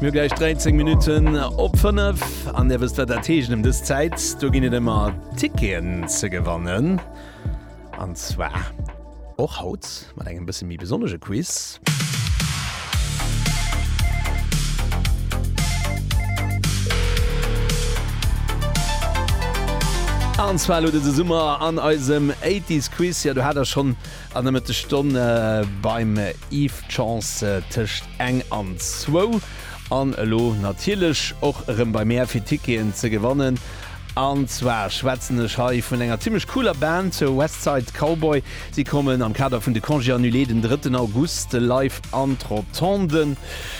Mir hu gläich 13 Minutten op 5 an Dir wësst wat dat heescht ëm dës Zäit. Do ginn et ëmmer Ticketen ze gewannen an zwar och haut mat engem bësse méi besonnege Quiz. An zwar elo dëse Summer an eisem 80s Quiz. Jo, do hat Der schonn An der Mëttesstonn beim Yves d'Chance tëscht eng an zwou. An elo natierlech och erëm bei mär fir Ticketen ze gewannen. An zwar schwätzen ech hei vun enger zimmlech cooler Band, West Side Cowboy. Si kommen am Kader vun de Congés Annulés den drëtten August live an d'Rotondë.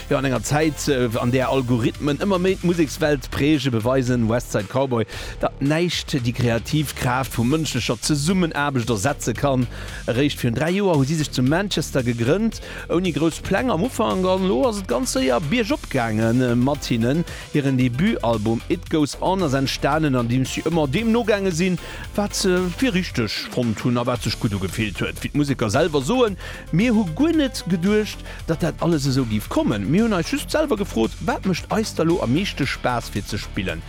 Jo, an enger Zäit, an där Algorithmen ëmmer méi d'Musekswelt prägen, beweisen West Side Cowboy, datt näischt déi kreativ Kraaft vu mënschlecher Zesummenaarbecht ersetze kann. Eréischt virun 3 Joer hu si sech zu Manchester gegrënnt, ouni grouss Pläng am Ufank, an elo ass et ganz séier biergop gaange mat hinnen. Hiren Debutalbum It Goes On ass entstanen, andeems si ëmmer deem nogaange sinn, wat se fir richteg fonnt hunn a wat sech gutt ugefillt huet. Wéi d'Museker selwer soen, Mir hu guer net geduecht, datt dat alles esou géif kommen. Mir hunn eis just selwer gefrot, Wat mécht eis da lo am meeschte Spaass fir ze spillen?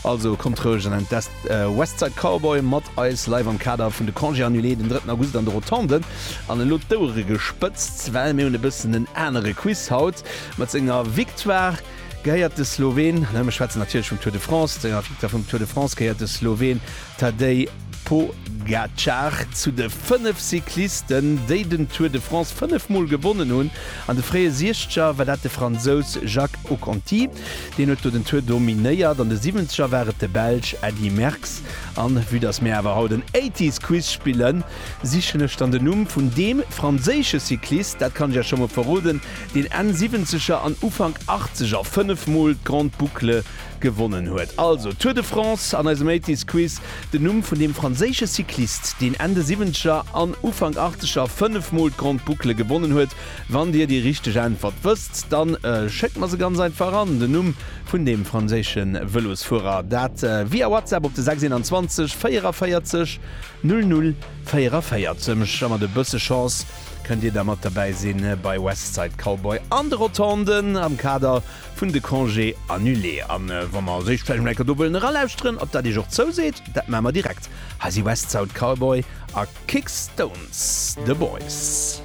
Also kommt roueg an entdeckt West Side Cowboy mat eis live am Kader vun de Congés annulés den drëtten August an de Rotonden. An elo d'Ouere gespëtzt, well mir hunn e bëssen en anere Quiz haut. Mat senger Victoire gehéiert de Slowen, mir schwätzen natierlech vum Tour de France, senger Victoire vum Tour de France gehéiert de Slowen Tadej Pogacar zu de fënnef Cyclisten, déi den Tour de France fënnef Mol gewonnen hunn. An de fréie Siechzeger war dat de Fransous Jacques Oconti, deen huet do den Tour dominéiert. An de Siwwenzeger war et de Belsch Eddy Merckx. An vue dass mir awer haut en Eighties Quiz spillen, sichen ech dann den Numm vun deem franséische Cyclist, dat kann ech iech scho mol verroden, deen Enn Siwwenzeger an Ufank Achtzeger fënnef Mol d'Grande Boucle Gewonnen huet also d'Tour de France an eisem Eighties Quiz den Numm vun deem franséische Cyclist, deen Enn de Siwwenzeger an Ufank Achtzeger 5 Mol d'Grande Boucle gewonnen huet. Wann Dir déi richteg Äntwert wësst, da schéckt mer se ganz einfach an. Den Numm vun deem franséische Vëlosfuerer, dat via WhatsApp op de 621 44 00 44. A mat e bësse Chance kënnt Dir da mat derbäi si bei West Side Cowboy an de Rotonden am Kader vun de Congés annulés. An wa mer séischt vläicht mol eng Kéier do wëllen eralauschteren, ob dat Iech och zouseet, dat maache mer direkt. Hei si West Sound Cowboy a Kicks Stones The Boys.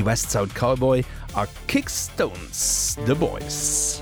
West Sound Cowboy a Kicks Stones The Boys.